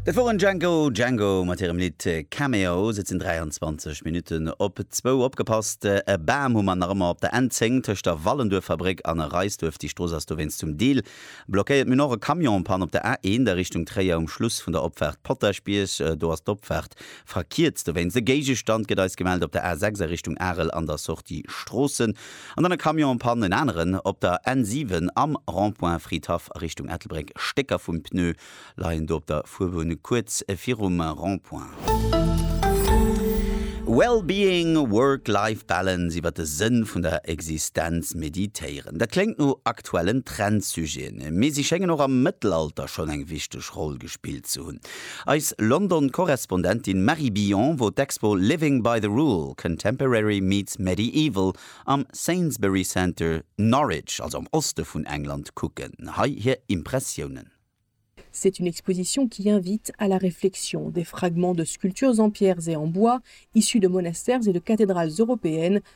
Dat woren Django Django mat hirem Lidd Cameos. Et sinn 23 Minutten op zwou. Opgepasst, e Bam hu mer nach ëmmer op der N 10 tëscht der Wallenduerffabréck an Reisduerf. Déi Strooss ass dowéinst zum Deel blockéiert. Mir hunn och e Camion en Panne op der A 1 a Richtung Tréier um Schluss vun der Opfaart Potaschbierg. Do ass d'Opfaart verkierzt dowéinst. E Géigestand gëtt eis gemellt op der A 6 a Richtung Arel an der Sortie Stroossen. An dann e Camion en panne, en aneren op der N 7 am Rond-point Fridhaff a Richtung Ettelbréck. Stécker vum Pneu leien do op der Fuerbunn kuerz virum Rond-point. Well-being, Work-Life Balance, Iwwer de Sënn vun der Existenz meditéieren. Dat kléngt no aktuellen Trend-Sujeten, mee si schéngen och am Mëttelalter schonn eng wichteg Roll gespillt ze hunn. Eis London-Korrespondentin Marie Billon wor d'Expo Living by the Rule, Contemporary meets Medieval am Sainsbury Centre, Norwich, also am Oste vun England, kucken. Hei hir Impressiounen. C'est une exposition qui invite à la réflexion, des fragments de sculptures en pierres et en bois issus de monastères et de cathédrales européennes